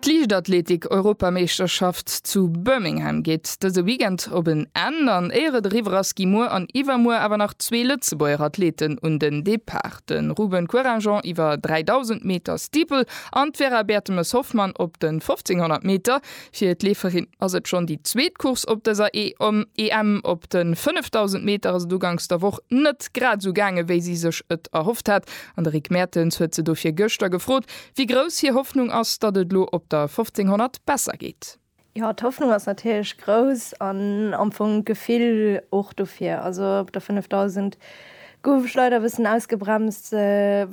D'Liichtathletik-Europameeschterschaft zu Birmingham geet dëse Weekend op en Enn an éier et eriwwer ass, gi muer an iwwermuer awer nach zwee Lëtzebuerger Athleten un den Depart, de Ruben Couragent iwwer 3.000 Meter Steeple an d'Vera Bertemes-Hoffmann op den 1.500 Meter. Fir d'Leeferin ass et schonn déi zweet Course op dëser EM. Op de 5.000 Meter ass et uganks der Woch net grad esou gaange wéi si sech et erhofft hat, An de Rick Mertens huet se dofir gëschter gefrot, wéi grouss hir Hoffnung ass, datt et lo op der 1500 besser geet. Jo, d'Hoffnung ass natierlech grouss an am Fong d'Gefill och dofir. Also op der 5000 gouf ech leider e bëssen ausgebremst,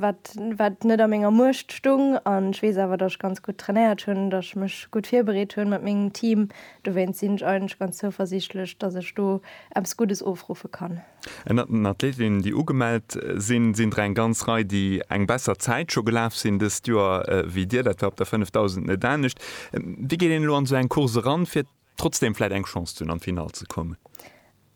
wat wat net a menger Muecht stung. An ech weess awer, datt ech ganz gutt trainéiert hunn, datt ech mech gutt virbereet hunn mat mengem Team. Dowéinst sinn ech eigentlech ganz zouversiichtlech, datt ech do eppes Guddes ofruffe kann. Ënnert den Athletinnen, déi ugemellt sinn, sinn der eng ganz Rei, déi eng besser Zäit scho gelaf sinn dëst Joer wéi Dir. Dat war op der 5000 net anescht. Wéi geet een elo an esou eng Course eran, fir trotzdeem vläit eng Chance ze hunn, an d'Finall ze kommen?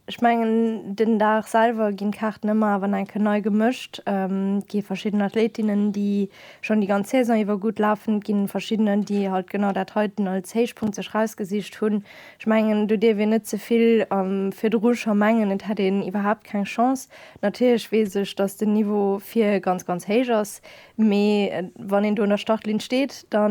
Ech mengen, den Dag selwer ginn d'Kaarten ëmmer awer nach eng Kéier nei gemëscht. Et gi verschidden Athletinnen, déi schonn déi ganz Saison iwwer gutt lafen. Et gi verschiddenen, déi halt genau dat heiten als Héichpunkt sech erausgesicht hunn. Ech mengen, do dierf een net ze vill virdru scho mengen, et hätt een iwwerhaapt keng Chance. Natierlech weess ech, datt den Niveau vir ganz, ganz héich ass, mee wann een do un der Startlinn steet, da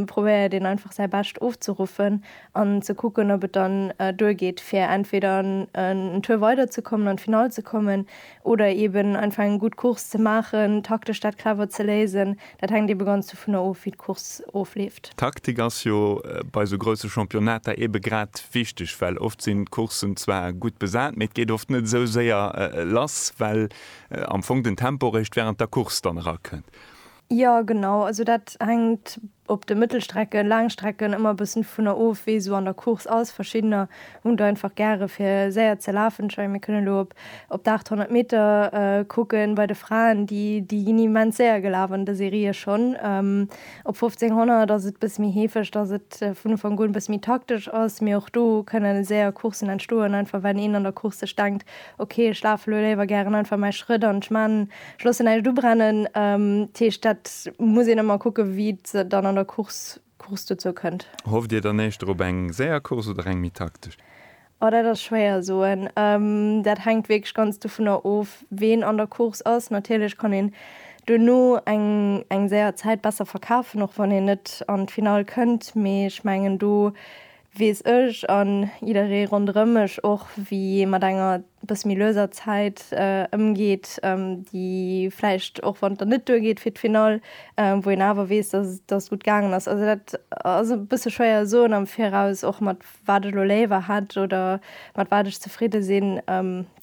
probéiert een einfach säi Bescht ofzeruffen an ze kucken, ob et dann duergeet, fir entweder en Tour weiderzekommen, an d'Finall ze kommen, Oder eben einfach eng gutt Course ze maachen, taktesch dat clever ze léisen. Dat hänkt ebe ganz dovunner of, wéi d'Course ofleeft. D'Taktik ass jo bei esou grousse Championnater ebe grad wichteg, well oft sinn d'Courssen zwar gutt besat, mee et geet oft net esou séier lass, well am Fong den Tempo réischt wärend der Course dann erakënnt. Jo, genau. Also dat hänkt Op de Mëttelstrecken, Laangstrecken ëmmer bëssen vunner of wéi esou an der Course ass. Verschiddener hunn do einfach gäre fir séier ze lafen. Ech mengen mir kënnen elo op op de 800 Meter kucken bei de Fraen. Déi déi ginn immens séier gelaf an de Serië schonn. Op 1500 ass et bësse méi heefeg, datt et vun Ufank un bësse méi taktesch ass. Mee och do kënne séier Coursen entstoen, einfach well een an der Course sech denkt, ok ech lafe lo léiwer gären einfach mäi Schrëtt an ech man Schlossen näischt ubrennen. Dat heescht, dat muss een ëmmer kucken, wéi et dann an der Course Course dozou kënnt. Hofft Dir dann éischter op eng séier Course oder eng méi taktesch? Oh, dat ass schwéier soen. Dat hänkt wierklech ganz dovunner of, ween an der Course ass. Natierlech kann een duerno eng eng séier Zäit besser verkafen, och wann een net an d'Finall kënnt. Mee ech mengen, do weess ech an jidderee ronderëm mech och, wéi ee mat enger bësse méi lueser Zäit ëmgeet, déi vläicht, och wann et dann net duergeet fir d'Finall, wou een awer weess, datt et datt et gutt gaangen ass. Also dat ass e bësse schwéier soen am Viraus, och mat wat ech elo léiwer hätt oder mat wat ech zefridde sinn.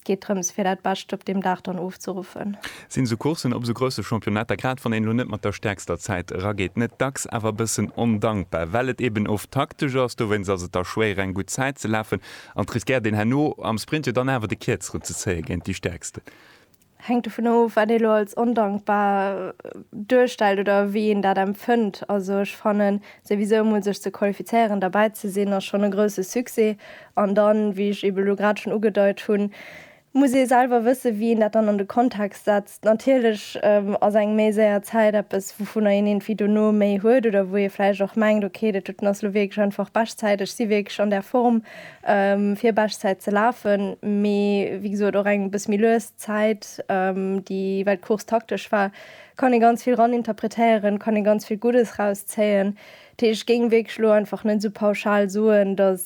geet drëms fir dat Bescht op deem Dag dann ofzeruffen. Sinn esou Courssen op esou grousse Championnetter, grad wann een elo net mat der stäerkster Zäit erageet, net dacks awer e bëssen ondankbar, well et eben oft taktesch ass? Dowéinst ass et da schwéier eng gutt Zäit ze lafen an et riskéiert een herno am Sprint jo dann awer de Kierzeren ze zéie géint déi Stäerksten. Hänkt dovun of wat ee elo als ondankbar duerstellt oder wéi een dat empfënnt. Also ech fannen Souwisou emol sech ze qualifizéieren, derbäi ze sinn, ass schonn e grousse Succès. An dann, wéi ech eeben elo grad schonn ugedeit hunn, muss ee selwer wëssen, wéi een dat dann an de Kontext setzt. Natierlech ass eng méi séier Zäit eppes, wouvunner een iergendwéi dono méi huet oder wou ee vläicht och mengt, okay, dat doten ass elo wierklech einfach Beschtzäit, ech si wierklech an der Form, fir Beschtzäit ze lafen. Mee wéi gesot, och eng e bësse méi lues Zäit, déi well d'Course taktesch war, Kann ee ganz vill ran interpretéieren, kann ee ganz vill Guddes raus zéien. Dat heescht, ech géing wierklech elo einfach net esou pauschal soen, datt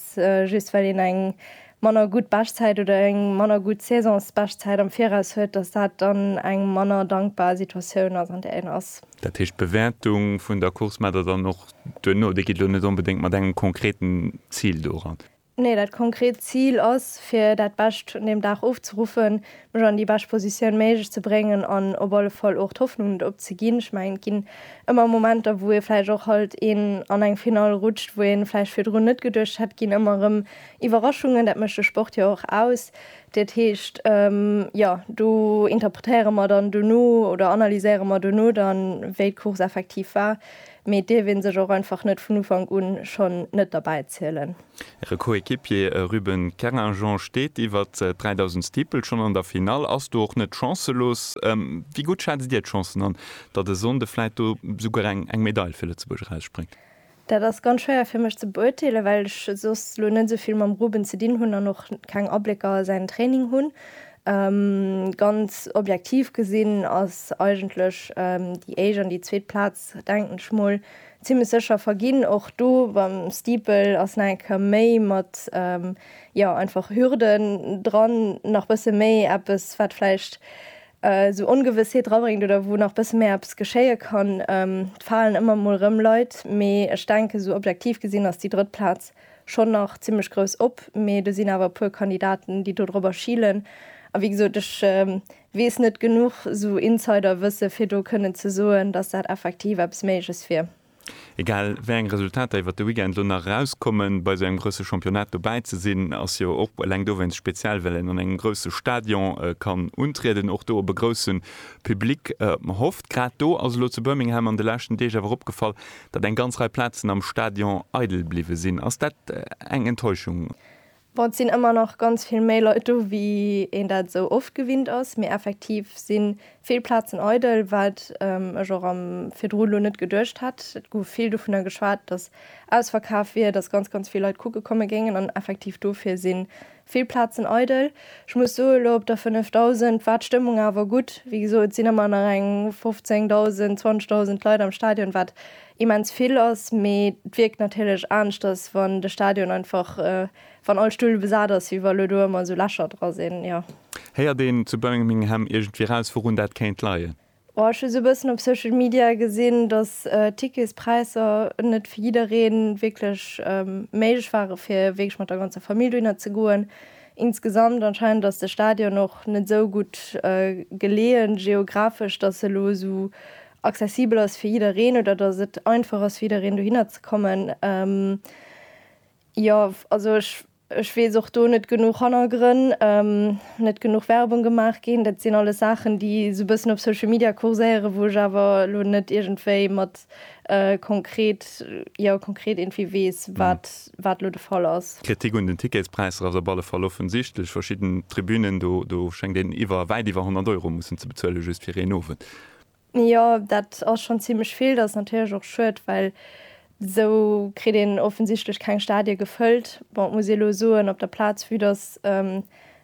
just well een eng manner gutt Beschtzäit oder eng manner gutt Saisonsbeschtzäit am Viraus huet, datt dat dann eng manner dankbar Situatioun ass, an där een ass. Dat heescht, d'Bewäertung vun der Course, mä dann och duerno, déi geet elo net onbedéngt mat engem konkreten Zil doran. Nee, dat konkret Zil ass, fir dat Bescht vun deem Dag ofzeruffen, mech an déi bescht Positioun méiglech ze bréngen an op alle Fall och d'Hoffnung net opzeginn. Ech mengen, et ginn ëmmer Momenter, wou ee vläicht och halt een an eng Finall rutscht, wou ee vläicht virdrun net geduecht hätt. Et ginn ëmmer erëm Iwwerraschungen, dat mécht de Sport jo och aus. Dat heescht, jo, do interpretéiere mer dann dono oder analyséiere mer dono dann, wéi d'Course effektiv war. Mee et dierf een sech och einfach net vun Ufank un schonn net derbäi zielen. Äre Coéquipier Ruben Kerringeon steet iwwert 3000 Steeple schonn an der Finall, ass do och net chancelos. Wéi gutt schätzt Dir d'Chancen an, datt e Sonnde vläit do souguer eng Medail fir Lëtzebuerg erausspréngt? Dat ass ganz schwéier fir mech ze beuerteelen, well ech soss elo net esou vill mam Ruben ze dinn hunn an och keng Ablécker a säin Training hunn. Ganz objektiv gesinn ass eigentlech déi éischt an déi zweet Plaz Denken ech mol zimlech secher verginn. Och do beim Steeple ass nach eng Kéier méi mat jo einfach Hürden dran, nach bësse méi eppes wat vläicht sou Ongewëssheet rabréngt oder wou nach bësse méi eppes geschéie kann. Et falen ëmmer mol rëm Leit, mee ech denken sou objektiv gesinn ass déi drëtt Plaz schonn nach zimlech grouss op. Mee do sinn awer e puer Kandidaten déi dodrobber schilen a wéi gesot ech Wees net genuch sou Insider wësse fir do kënnen ze soen dass dat effektiv eppes méiges wier. Egal wéi eng Resultater iwwert de Weekend elo nach erauskommen, bei esou engem grousse Championnat dobäi ze sinn ass jo och eleng dowéinst speziell, well een an engem grousse Stadion kann untrieden, och do op e grousse Public hofft. Grad do ass elo zu Birmingham an de leschten Deeg awer opgefall, datt eng ganz Rei Plazen am Stadion eidel bliwwe sinn. Ass dat eng Enttäuschung? Bon, et sinn ëmmer nach ganz vill méi Leit do, wéi een dat esou oft gewinnt ass, mee effektiv si vill Plazen eidel, wat ech och am virdru elo net geduecht hätt. Et gouf vill dovunner geschwat, dass ausverkaaft wier, dass ganz, ganz vill Leit kucke komme géingen an effektiv dofir si vill Plazen eidel. Ech muss soen, elo op der 5000 war d'Stëmmung awer gutt. Wéi gesot, et sinn ëmmer nach eng 15.000, 20.000 Leit am Stadion, wat immens vill ass, mee et wierkt natierlech aneschters wann de Stadion einfach wann all Stull besat ass wéi wa lo do ëmmer esou Lächer dra sinn, jo. Héiert een zu Birmingham iergendwéi raus wourun dat kéint leien? Oh ech hu esou e bëssen op Social Media gesinn, datt d'Ticketspräisser net fir jiddereen wierklech méiglech ware fir wierklech mat der ganzer Famill dohinner ze goen. Insgesamt anscheinend ass de Stadion och net esou gutt geleeë geographesch, datt e lo esou accessibel ass fir jiddereen oder dass et einfach ass fir jiddereen dohinner ze kommen. Ähm, jo, also ech, ech weess och do net genuch Hannergrënn, ähm, net genuch Werbung gemaach ginn. Dat sinn alles Saachen, déi esou e bëssen op Social Media kurséieren, wou ech awer elo net iergendwéi mat äh, konkret, jo, konkret iergendwéi weess, wat, wat elo de Fall ass. D'Kritik un den Ticketspräisser ass op alle Fall offensichtlech. Verschidden Tribünen, do, do schéngt een iwwer, wäit iwwer 100 Euro mussen ze bezuelen, just fir een Owend. Jo, dat ass schonn zimmlech vill. Dat ass natierlech och schued, well esou kritt een offensichtlech keng Stadie gefëllt. Bon, et muss ee elo soen, op der Plaz, vue datt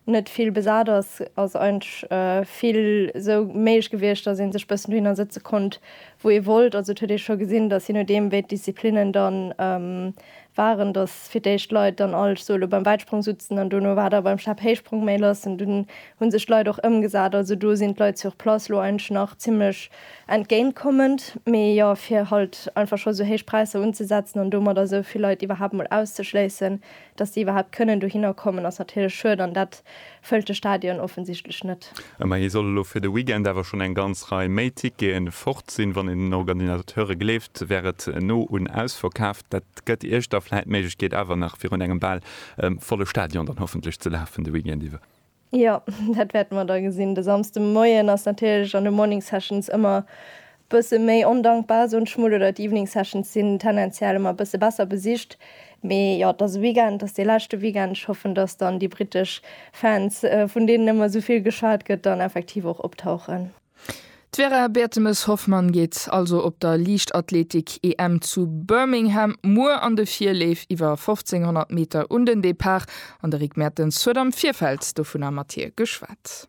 net vill besat ass, ass eigentlech vill esou méiglech gewiescht, datt ee sech e bëssen dohinner sëtze konnt, wou ee wollt. Also et huet ee scho gesinn, datt, jee nodeem wéi d'Disziplinnen dann waren dass fir d'éischt Leit dann all solo beim Wäitsprong sutzen an dono war da beim Stabhéichsprong méi lass an dunn hu sech d'Leit och ëmgesat. Also do sinn d'Leit sur place lo eigentlech nach zimmlech entgéintkommend. Mee jo fir halt einfach scho sou héich Präisser unzesetzen an domadder sou vill Leit iwwerhaapt mol auszeschléissen dass déi iwwerhaapt kënnen dohinner kommen ass natierlech schued an dat Fëllt de Stadion offensichtlech net. Ëmmerhi soll elo fir de Weekend awer schonn eng ganz Rei méi Tickete fort sinn. Wann een den Organisateure gleeft, wär et no un ausverkaaft. Dat gëtt Iech da vläit d'Méiglechkeet awer nach virun engem bal volle Stadion dann hoffentlech ze lafen de Weekend iwwer. Jo, dat wäerte mer da gesinn. De Samsdemoien ass natierlech an de Morning Sessions ëmmer Bësse méi ondankbar, esou d'Schmull, oder d'Evening Sessions sinn tendenziell ëmmer e bësse besser besicht. Mee jo, et ass e Weekend, et ass dee leschte Weekend. Ech hoffen, datt dann déi brittesch Fans, vun deenen ëmmer esou vill geschwat gëtt, dann effektiv och optauchen. D'Vera Bertemes-Hoffmann geet also op der Liichtathletik-EM zu Birmingham muer an de Virleef iwwer 1500 Meter un den Depart an de Rick Mertens huet am Virfeld dovunner mat hir geschwat.